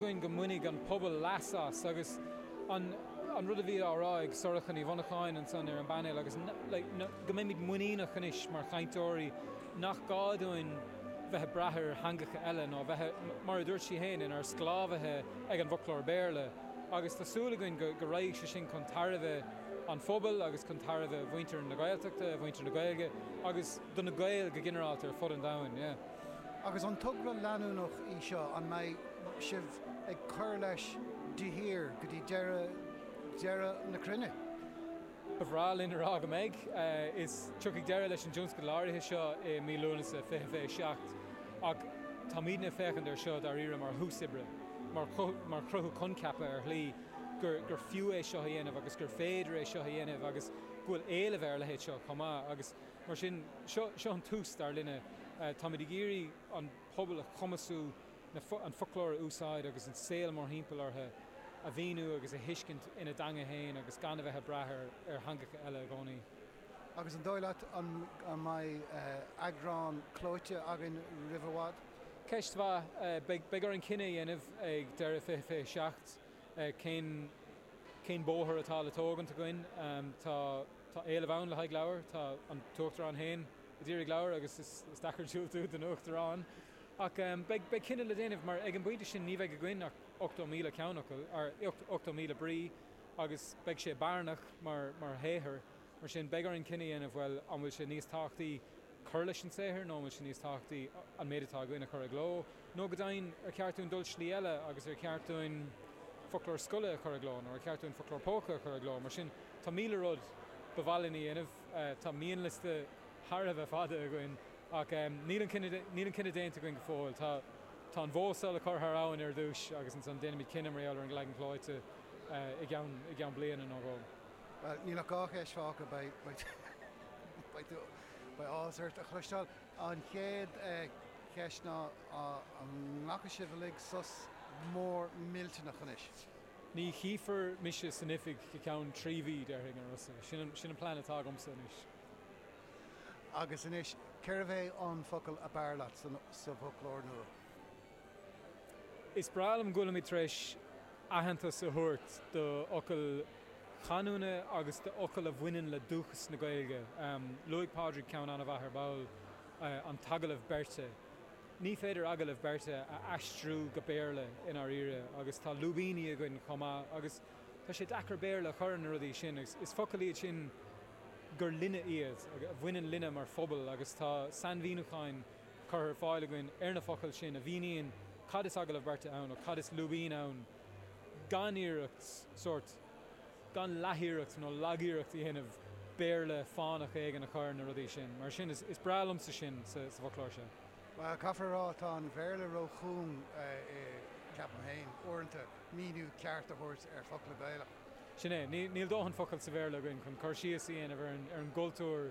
againn go mbainfidh an pobal leas as agus an rud a bhí á rá ag Sorcha Ní Mhonacháin ansan ar an bpainéal agus go mbeimid muiníneach anois mar chainteoirí nach gá dúinn bheith ag brath ar theangacha eile ná bheith, mar a dúirt sí féin, inár sclábhaithe ag an bhfoclóir Béarla agus tá súil againn go raghaidh sé sin chun tairbhe an phobail agus chun tairbhe mhuintir na Gaeltachta, mhuintir na Gaeilge agus do na Gaeil go ginearálta ar fud an domhain. Agus an togra leanúnach é seo? An mbeidh sibh ag cur leis de shíor go dtí deireadh, deireadh na cruinne? Ba bhreá linn a rá go mbeidh. Is, tiocfaidh deireadh leis an dtionscadal áirithe seo i mí Lúnasa 2027 ach táimidne ag féachaint air seo dáiríre mar thús oibre, mar chruthú coincheapa ar shlí gur fiú é seo a dhéanamh agus gur féidir é seo a dhéanamh agus go bhfuil éileamh ar a leithéid seo chomh maith. Agus. Mar sin, seo an tús, dar linne. Táimid ag iarraidh an pobal a chumasú an foclóir a úsáid agus an saol mórthimpeall orthu a mhíniú agus a thuiscint ina dteanga féin agus gan a bheith ag brath ar theangacha eile i gcónaí. Agus an dóigh leat an mbeidh eagrán clóite againn roimh i bhfad? Ceist mhaith. Beidh orainn cinneadh a dhéanamh ag deireadh 2027 cén bóthar atá le tógaint againn. Tá. Tá éileamh ann le haghaidh leabhair, tá an tUachtarán féin ag iarraidh leabhair agus is deacair diúltú don Uachtarán. Ach beidh cinneadh le déanamh mar ag an bpointe sin ní bheidh againn ach 80,000 ceannfhocal, ar 80,000 brí, agus beidh sé bearnach mar shaothar. Mar sin beidh orainn cinneadh a dhéanamh, bhuel, an bhfuil sé níos tábhachtaí, cur leis an saothar nó an bhfuil sé níos tábhachtaí an méid atá againn a chur i gcló? Nó go deimhin, ar cheart dúinn dul slí eile agus ar cheart dúinn foclóir scoile a chur i gcló nó ar cheart dúinn foclóir póca a chur i gcló? Mar sin, tá míle rud ba mhaith linn a dhéanamh, tá mianliosta thar a bheith fada againn, ach níl an cinneadh déanta againn go fóill. Tá an bhó seo le cur thar abhainn ar dtús agus ansan déanfaimid cinneadh mar gheall ar an leagan clóite i gceann bliana nó dhó. Bhuel, níl ach dhá cheist fágtha. Beidh. Beidh áthas ort a chloisteáil. An chéad cheist ná an nglacfaidh sibh uilig sos mór millteanach anois? Ní chífear mise san oifig go ceann trí mhí, déarfainn, a Rossa. Sin an plean atá agamsa anois. Agus anois, cérbh é an focal ab fhearr leat sa bhfoclóir nua? Is breá liom go bhfuilimid tar éis aitheantas a thabhairt do fhocail chanúna agus do fhocail a bhaineann le dúchas na Gaeilge. Luaigh Pádraig ceann an-mhaith ar ball, an t-agallamh beirte. Ní féidir agallamh beirte a aistriú go Béarla i ndáiríre agus tá lúibíní againn chomh maith agus tá sé deacair Béarla a chur ar na rudaí sin agus is focail iad sin gur linne iad, a bhaineann linne mar phobal agus tá sainmhíniúcháin curtha ar fáil againn ar na focail sin a mhíníonn cad is agallamh beirte ann nó cad is lúibín ann gan iarracht, sórt, gan leathiarracht nó lagiarracht a dhéanamh Béarla fánach éigin a chur ar na rudaí sin. Mar sin, is breá liomsa sin sa bhfoclóir seo. Bhuel, caithfear a rá, tá an Béarla róchúng, ceapaim féin, uaireanta, míniú ceart a thabhairt ar focla Gaelach. Sin é. Níl dóthain focal sa Bhéarla againn chun cur síos a dhéanamh ar an gcultúr.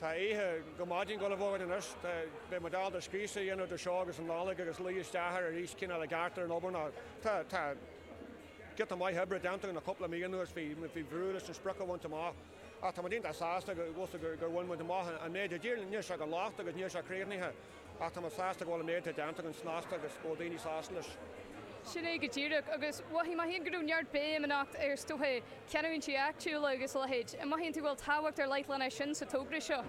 Tá oíche go maidin go le bhfógairt anois. Beidh muid ábalta scríste a dhéanamh idir seo agus an Nollaig agus luí isteach air arís, cineál, i gceart ar an obair ná. Tá giota maith oibre déanta againn le cúpla mí anuas, bhí brú leis an sprioc a bhaint amach. Ach tá muid iontach sásta gur bhain muid amach an méid dar ndóigh, níl sé gan locht agus níl sé críochnaithe. Ach tá muid sásta go bhfuil an méid atá déanta againn snasta agus go bhfuil daoine sásta leis. Sin é go díreach. Agus mhothaigh mé féin go raibh neart béim anocht ar, is dócha, canúintí áitiúla agus a leithéid. An mothaíonn tú go bhfuil tábhacht ar leith len é sin sa togra seo?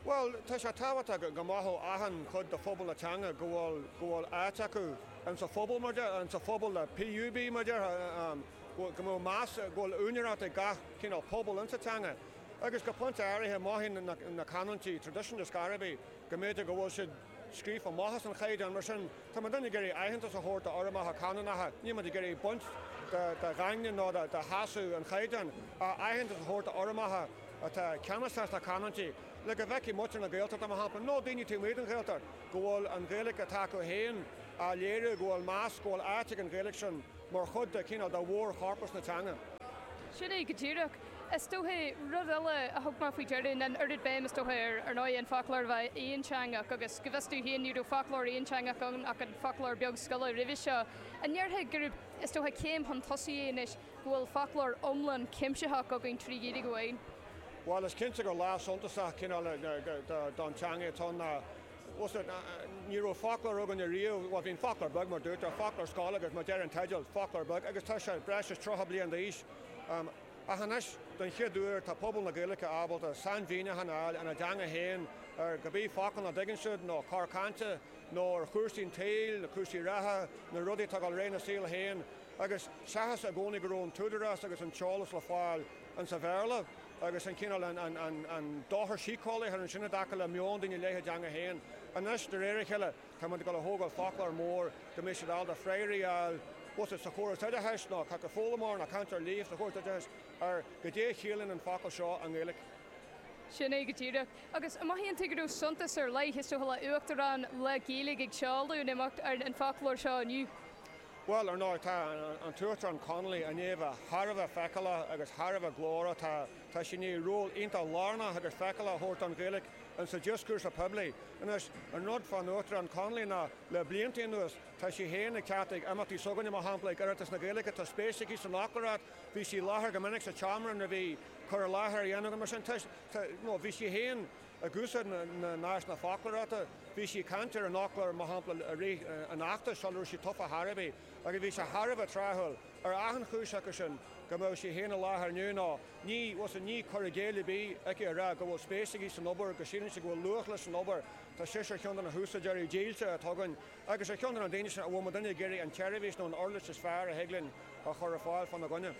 Bhuel, tá sé tábhachtach go mothódh achan chuid de phobal na teanga go bhfuil, go bhfuil áit acu in sa phobal, mar déarfá, in sa phobal le PUB, mar déarfá, go mbeadh meas, go bhfuil úinéireacht ag gach cineál pobal in sa teanga. Agus go pointe áirithe mothaíonn na canúintí traidisiúnta is gairbhí. go mb'fhéidir go bhfuil siad scríofa amach as an Chaighdeán, mar sin, tá muidinne ag iarraidh aitheantas a thabhairt d'fhoirmeacha canúnacha, níl muid ag iarraidh baint de dhaingne nó de sheasamh an Chaighdeáin, ach aitheantas a thabhairt d'fhoirmeacha atá ceannasach sna canúintí, le go bhfeicfidh muintir na Gaeltachta, mar shampla, nó daoine taobh amuigh den Ghaeltacht, go bhfuil an Ghaeilge atá acu féin á léiriú, go bhfuil meas, go bhfuil áit ag an Ghaeilge sin. mar chuid de, cineál, de mhórchorpas na teanga. Sin é go díreach. Is dóiche, rud eile a thug mé faoi deara ná an oiread béim, is dóiche, ar, ar ndóigh, an foclóir a bheith aonteangach, agus go bhfios dom féin, ní raibh foclóir aonteangach ann ach an foclóir beag scoile roimhe seo. An ndéarfá gurb, is dóiche, céim chun tosaigh é anois go bhfuil foclóir iomlán cuimsitheach againn trí Ghaeilge amháin? Bhuel, is cinnte gur lá suntasach, cineál, don teanga atá ann ná Bhuel, ní raibh foclóir againn ariamh, bhuel, bhí an Foclóir Beag, mar dúirt, an foclóir scoile agus mar deir an teideal, foclóir beag, agus tá sé breis is tríocha bliain d'aois. Ach anois, don chéad uair, tá pobal na Gaeilge ábalta sainmhíniúchán a fháil ina dteanga féin ar cibé focal nach dtuigeann siad, nó cor cainte, nó ar chúrsaí an tsaoil, na cúrsaí reatha, na rudaí atá ag dul ar aghaidh sa saol féin, agus seachas i gcónaí go raibh an t-údarás agus an t-eolas le fáil insa Bhéarla. agus an cineál, an, an, an, an dochar síceolaíoch a rinne sin i dtaca le meon daoine i leith a dteanga féin. Anois, de réir a chéile, tá muid ag dul a thógáil foclóir mór go mbeidh siad ábalta freagraí a fháil, má tá siad sa chóras oideachais nó cé acu foghlaimeoir nó cainteoir líofa sa chóras oideachais ar goidé a chiallaíonn an focal seo i nGaeilge. Sin é go díreach. Agus an mothaíonn tú go raibh suntas ar leith, is dócha, le Uachtarán le Gaeilge ag seoladh an imeacht ar an foclóir seo inniu. Bhuel, ar ndóigh, tá an tUachtarán Connolly, i ndiaidh a bheith thar a bheith feiceálach agus thar a bheith glórach. Tá sí i ndiaidh ról iontach lárnach agus feiceálach a thabhairt don Ghaeilge insa dioscúrsa poiblí. Anois, an rud fán Uachtarán Connolly ná, le blianta anuas, tá sí féin ag teacht ag imeachtaí s'againne, mar shampla, ag Oireachtas na Gaeilge, tá spéis aici san fhoclóireacht, bhí sí i láthair go minic sa tseomra nuair a bhí cur i láthair á dhéanamh againn, mar sin, tá, you know, bhí sí féin. Ag úsáid na n-áiseanna foclóireachta, bhí sí ag caint ar an fhoclóir, mar shampla, i rith an fheachtais sula raibh sí tofa ar chor ar bith, agus bhí sé thar a bheith tráthúil, ar achan chúis acu sin, go mbeadh sí féin i láthair inniu, nó ní, bhuel, sin, ní cur i gcéill ar bith aici a rá go bhfuil spéis aici san obair, go síleann sí go bhfuil luach leis an obair, tá sise ar cheann de na húsáideoirí dílse atá againn, agus ar cheann de na daoine sin a bhfuil muidinne ag iarraidh an tseirbhís nó an uirlis is fearr a thig linn a chur ar fáil fána gcoinne.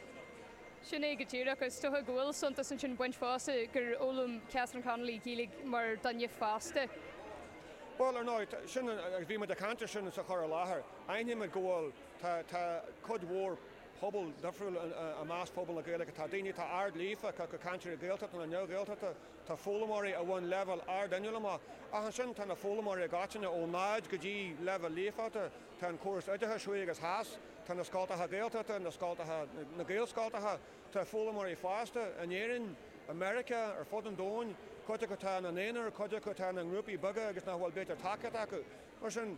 Sin é go díreach. Is dócha go bhfuil suntas ansin ag baint fosta gur fhoghlaim Catherine Connolly Gaeilge mar dhuine fásta. Bhuel, ar ndóigh, sin an, agus bhí muid ag caint air sin sa chur i láthair, aithníonn muid go bhfuil, tá, tá cuid mhór pobal difriúil i measc phobal na Gaeilge. Tá daoine atá ard-líofa, cé acu cainteoirí Gaeltachta nó neamh-Ghaeltachta, tá foghlaimeoirí a bhain leibhéal ard-inniúil amach, ach ansin tá na foghlaimeoirí i gcoitinne, ó náid go dtí leibhéal líofachta, Tá an córas oideachais thuaidh agus theas, tá na scoltacha Gaeltachta, na scoltacha, na Gaelscoltacha, tá foghlaimeoirí fásta, in Éirinn, i Meiriceá, ar fud an domhain, cuid acu atá ina n-aonar, cuid acu atá ina ngrúpaí beaga agus nach bhfuil, b'fhéidir, tacaíocht acu. Mar sin,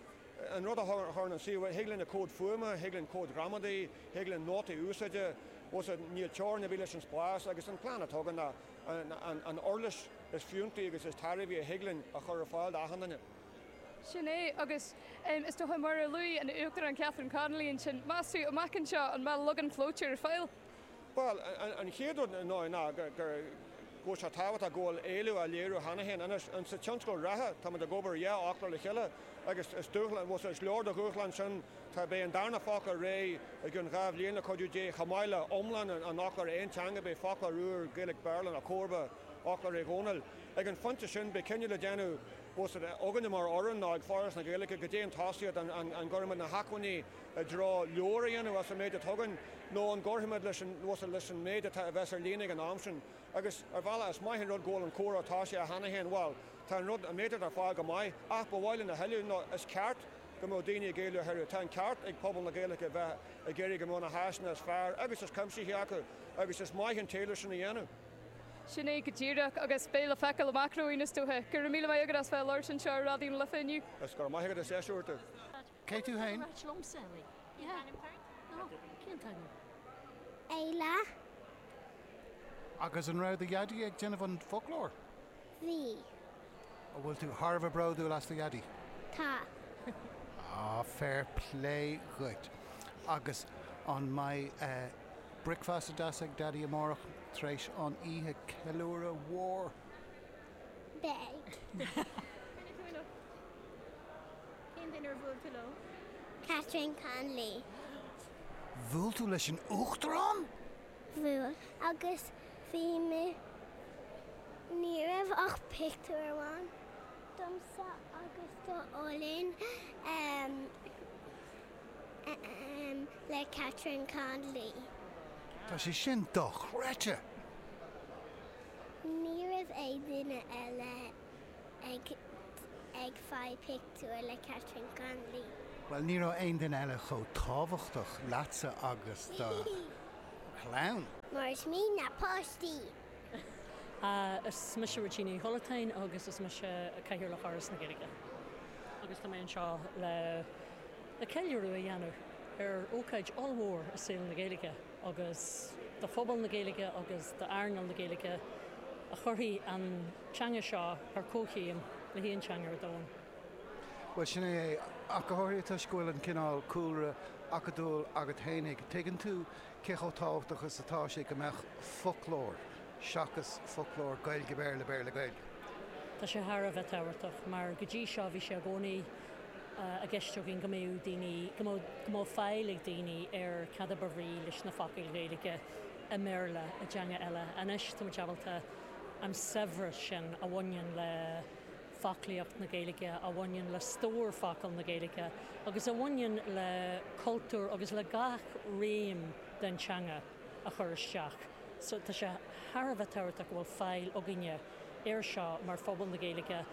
an rud a chuireann an suíomh, thig linn comhad fuaime, thig linn comhad gramadaí, thig linn nótaí úsáide, bhuel, níl teorainn ar bith leis an spás agus an plean atá againn ná an uirlis is fiúntaí agus is tairbhí a thig linn a chur ar fáil d'achan duine. Sin é. Agus is dócha, mar a luaigh an Uachtarán Catherine Connolly ansin, meas tú, amach anseo, an mbeidh leagan clóite ar fáil? Bhuel, an chéad rud ar ndóigh ná go bhfuil sé tábhachtach go bhfuil éileamh á léiriú cheana féin. Anois, sa tionscadal reatha, táimid ag obair ar dhá fhoclóir le chéile agus is dúshlán, bhuel, is leor de dhúshlán sin, tá, beidh an darna foclóir réidh i gceann dhá bhliain, le cuidiú Dé, chomh maith le iomlán an fhoclóir aonteangaigh, beidh foclóir úr Gaeilge-Béarla ina chomharba fhoclóir Uí Dhónaill. Ag an phointe sin, beidh cinneadh le déanamh. bhfuil a fhios agat, againne mar fhoireann nó ag Foras na Gaeilge, goidé an tosaíocht, an gcuirfimid na hacmhainní i dtreo leabhar a dhéanamh as an méid atá againn nó an gcuirfimid leis an, bhfuil a fhios agat, leis an méid atá a bheas ar líne ag an am sin? Agus, ar bhealach, is maith an rud go bhfuil an comhrá tosaithe cheana féin, bhuel, tá an rud, an méid atá ar fáil go maith, ach ba mhaith linn a thuilleadh nó is ceart go mbeadh daoine ag éileamh a thuilleadh. Tá an ceart ag pobal na Gaeilge a bheith ag iarraidh go mbeadh na háiseanna is fearr agus is cuimsithí acu agus is maith an t-éileamh sin a dhéanamh. Sin é go díreach, agus beidh le feiceáil amach romhainn, is dócha. Go raibh míle maith agat as bheith ag labhairt anseo ar Raidió na Life inniu. Is go raibh maith agat as deis a thabhairt dom. Cé tú féin? Éile. Agus an raibh do dhaidí ag déanamh an foclóir? Bhí. An bhfuil tú thar a bheith bródúil as do Dhaidí? Tá. Á, fair plé dhuit. Agus an mbeidh bricfeasta deas ag Daidí amárach tar éis an oíche ceiliúradh mhóir? Beidh. Cén duine ar bhuail tú leo? Catherine Connolly. Bhuail tú leis an Uachtarán? bhuail agus bhí mé. Ní raibh ach pictiúr amháin domsa agus do Oilín ehm ehm le Catherine Connolly. Tá sé sin dochreidte! Ní raibh aon duine eile ag ag faigh pic. tiúr le Catherine Connolly. Bhuel, ní raibh aon duine eile chomh tábhachtach leatsa agus do chlann. Mar is mian le páistí. Is mise Regina Uí Chollatáin agus is mise Cathaoirleach Fhoras na Gaeilge agus tá mé anseo le ceiliúradh a dhéanamh ar ócáid ollmhór i saol na Gaeilge. agus do phobal na Gaeilge agus d'earnáil na Gaeilge a chuirfidh an teanga seo ar comhchéim le haon teanga ar domhan. Bhuel, sin é é. Ach go háirithe toisc go bhfuil an cineál cúlra acadúil agat fhéinig, tuigeann tú cé chomh tábhachtach is atá sé go mbeadh foclóir, seachas foclóir Gaeilge-Béarla, Béarla-Gaeilge. Tá sé thar a bheith tábhachtach, mar go dtí seo bhí sé i gcónaí. i gceist againn go mbeadh daoine, go mbeadh faill ag daoine ar cad a ba bhrí leis na focail Ghaeilge i mBéarla, i dteanga eile. Anois, tá muid ábalta an saibhreas sin a bhaineann le foclaíocht na Gaeilge, a bhaineann le stór focal na Gaeilge agus a bhaineann le cultúr agus le gach réim den teanga, a chur isteach. So tá sé thar a bheith tábhachtach go bhfuil faill againne air seo mar phobal na Gaeilge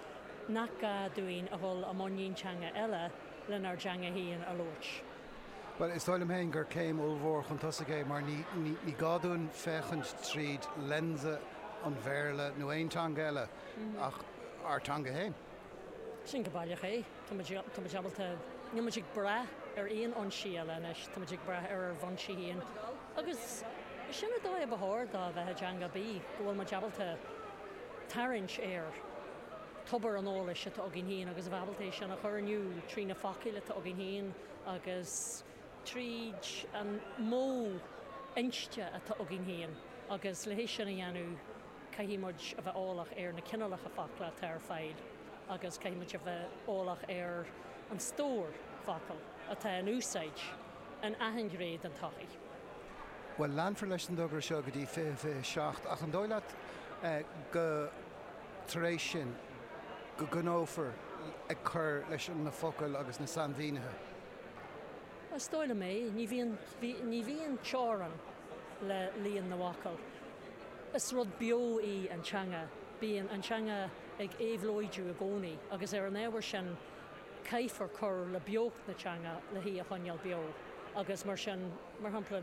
nach gá dúinn a dhul i mbun aon teanga eile lenár dteanga féin a labhairt. Bhuel, is dóigh liom féin gur céim ollmhór chun tosaigh é mar ní gá dúinn féachaint tríd lionsa an Bhéarla nó aon teanga eile ach ár teanga féin. Sin go baileach é. Tá muid ábalta, níl muid ag brath ar aon fhoinsí eile anois, tá muid ag brath ar ár bhfoinsí féin. Agus sin an dóigh a ba chóir dó a bheith i dteanga, bíodh go bhfuil muid ábalta tarraingt ar thobar an eolais atá againn féin agus a bheith ábalta é sin a chur in iúl trí na focail atá againn féin agus, tríd an modh inste atá againn féin agus le hé sin a dhéanamh caithfidh muid a bheith eolach ar na cineálacha focal atá ar fáil agus caithfidh muid a bheith eolach ar an stór focal atá in úsáid in achan ghné den tsochaí. Bhuel, leanfar leis an dtogra seo go dtí 2027 ach an dóigh leat, go, tar éis sin, go gcoinneofar ag cur leis na focail agus na sainmhínithe? Is dóigh liom é. Ní bhíonn, ní bhíonn teorainn le líon na bhfocal. Is rud beo í an teanga. Bíonn an teanga ag éabhlóidiú i gcónaí agus ar an ábhar sin caithfear cur le beocht na teanga le hí a choinneáil beo agus mar sin, mar shampla,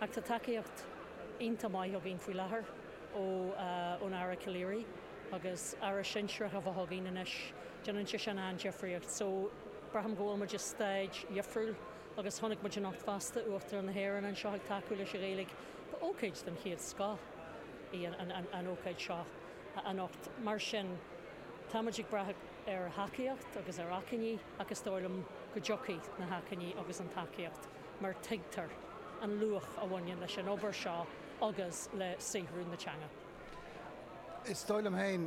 Ach tá tacaíocht iontach maith againn faoi láthair ón Aire Calleary agus Aire Sinsearach a bheith againn anois, déanann sé sin an-difríocht. So, braithim go bhfuil muid i stáid dhifriúil agus chonaic muid anocht fosta Uachtarán na hÉireann anseo ag tacú leis an Ghaeilge. Ba ócáid den chéad scoth í an ócáid seo anocht. Mar sin, tá muid ag brath ar thacaíocht agus ar acmhainní ach is dóigh liom go dtiocfaidh na hacmhainní agus an tacaíocht. mar tuigtear an luach a bhaineann leis an obair seo agus le saothrú na teanga. Is dóigh liom féin,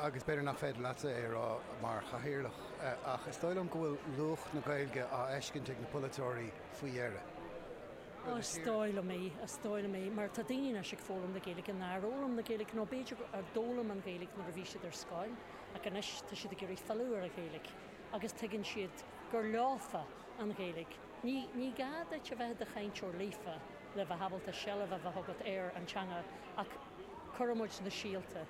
agus b'fhéidir nach féidir leatsa é a rá mar Chathaoirleach, ach is dóigh liom go bhfuil luach na Gaeilge á fheiscint ag na polaiteoirí faoi dheireadh. Ó is dóigh liom é, is dóigh liom é, mar tá daoine anois ag foghlaim na Gaeilge nár fhoghlaim na Gaeilge, nó b'fhéidir ar d'fhoghlaim an Ghaeilge nuair a bhí siad ar scoil, ach anois tá siad ag iarraidh filleadh ar an Ghaeilge agus tuigeann siad gur leofa an Ghaeilge. Ní gá duit a bheith i do chainteoir líofa le bheith ábalta seilbh a bheith agat ar an teanga ach cuireann muid na síolta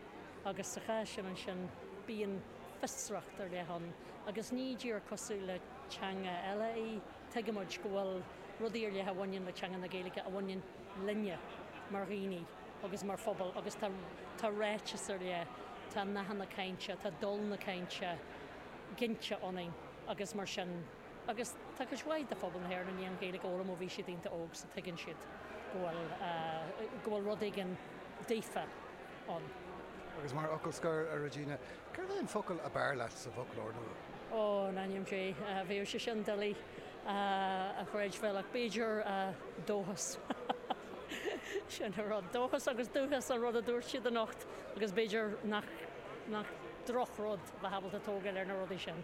agus sa chás sin ansin bíonn fiosracht ar leith ann agus ní díreach cosúil le teanga eile í, tuigeann muid go bhfuil rudaí ar leith a bhaineann le teanga na Gaeilge a bhaineann linne mar dhaoine agus mar phobal agus tá ráiteas ar leith, tá nathanna cainte, tá dul na cainte ginte ionainn agus mar sin. Agus tá cuid mhaith de phobal na hÉireann a ndearna Gaeilge a fhoghlaim ó bhí siad ionta óg so tuigeann siad go bhfuil, go bhfuil rud éigin daofa ann. Agus mar fhocal scoir, a Regina, céard é an focal ab fhearr leat sa bhfoclóir nua? Ó, in ainm Dé, bheadh sé sin doiligh a chreidbheáil ach b'fhéidir dóchas. Sin an rud. Dóchas agus dúchas an rud a dúirt siad anocht agus b'fhéidir nach, nach droch rud bheith ábalta tógáil ar na rudaí sin.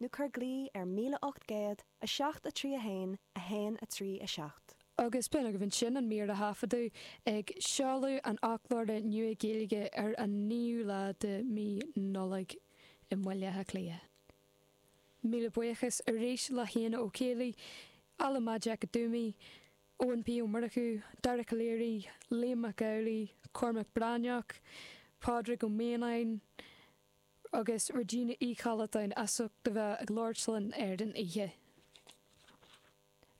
nó cuir glaoch ar 1807 3 1 1 3 7. Agus b'in agaibh ansin an mír a thaifeadadh ag seoladh an fhoclóra nua Gaeilge ar an 9ú lá de mí Nollaig i mBaile Átha Cliath. Míle buíochas arís le hÉanna Ó Caollaí, Ola Majekodunmi, Eoin P. Ó Murchú, Dara Calleary, Liam Mac Amhlaigh, Cormac Breathnach, Pádraig Ó Mianáin, agus Regina Uí Chollatáin as ucht a bheith ag labhairt linn ar an oíche.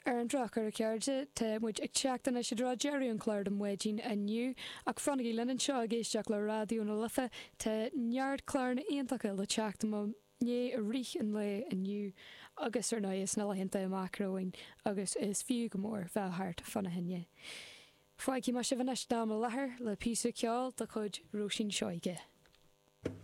Ar an drochuair, a chairde, tá muid ag teacht anois i dtreo deireadh an chláir don mhaidin inniu, ach fanaigí linn anseo ag éisteacht le Raidió na Life, tá neart cláranna iontacha le teacht i mo dhiaidh i rith an lae inniu agus, ar ndóigh, sna laethanta amach romhainn agus is fiú go mór bheith thart fána choinne. Fágfaidh mé sibh anois don am i láthair le píosa ceoil de chuid Róisín Seoige.